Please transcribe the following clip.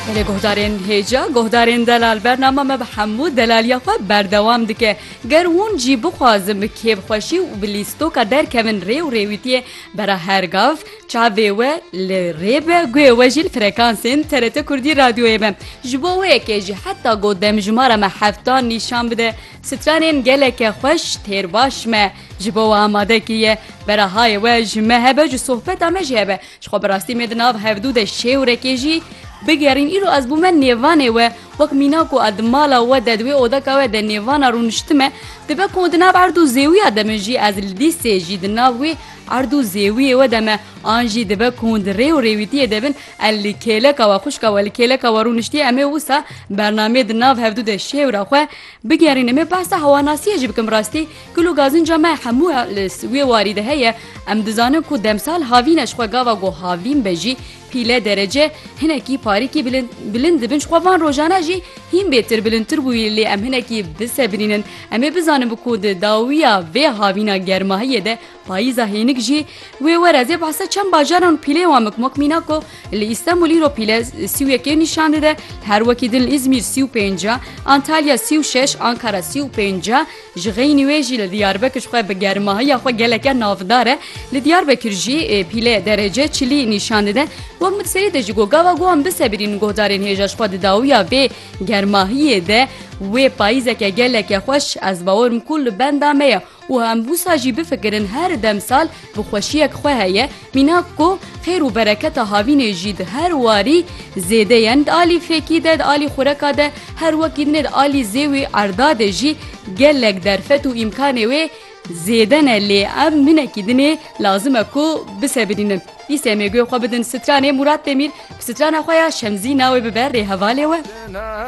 Belê guhdarên hêja guhdarên delal bernama me bi hemû delaliya xwe berdewam dike. Ger hûn jî bixwazin bi kêfxweşî û bi lîstoka derkevin rê û rêwîtiyê bera her gav çavê we li rê be guhê we jî li frekansên TRT Kurdî radyoyê be. Ji bo wê yekê jî heta ku demjimara me hefta nîşan bide stranên geleke xweş têr baş me ji bo we amade kiriye. Bera hayê we ji me hebe ji sohbeta me jî hebe. Ji xwe bi rastî me di nav hevdû de şêwrekê jî bigerîn. Îro ez bûme nêvanê we. Wek mîna ku ez di mala we de di wê odeka we de nêvana rûniştime, dibe ku di nav erd û zêwiya de me jî ez li lîsê jî di nav wê erd û zêwiyê we de me. An jî dibe ku hûn di rê û rêwîtiyê de bin ez li kêleka we, xwişka we li kêleka we rûniştiye em ê wisa bernameyê di nav hevdû de şêwra xwe bigerînim. Ê behsa hewanasiyê jî bikim bi rastî Kul û gazinca me hemû li wê warî de heye. Em dizanin ku demsal havîn e ji xwe gava ku havîn be jî pîle derece hinekî parîkî bilind dibin ji xwe van rojana jî hîn bêtir bilindtir bûyî lê em hinekî bisebirînin em ê bizanin bi ku di dawiya vê havîna germahiyê de Payîza hênik jî wê were zê behsa çend bajaran û pîleyên wan bikim wek Mînako li Îstenbul îro pîle sî û yekê nîşan dide, her wekî din li Îzmîr sî û pênc e, Antalya sî û şeş, Ankara sî û pênc e. Ji xeynî wê jî li Diyarbekir ji xwe bi germahiya xwe geleke navdar e. Li Diyarbekir jî pîle derece çilî nîşan dide. Wek min serî de ji go gava got em bisebirînin guhdarên hêja ji xwe di dawiya vê germahiyê de wê payîzeke geleke xweş ez bawer im ku li benda me ye. Û em wisa jî bifikirin her demsal bi xweşiyek xwe heye, mînak ku xêr û bereketa havînê jî di her warî zêde yen, di alî fêkî de, di alî xureka de, her wekî din e di alî zêwî erda de jî gelek derfet û îmkanê wê zêde ne lê em hinekî din ê lazim e ku bisebirînin. Dîsê mêguyê xwe bidin stranê Mûrat Demîr bi strana xwe ya Şemzî navê bibe rê hevalê we.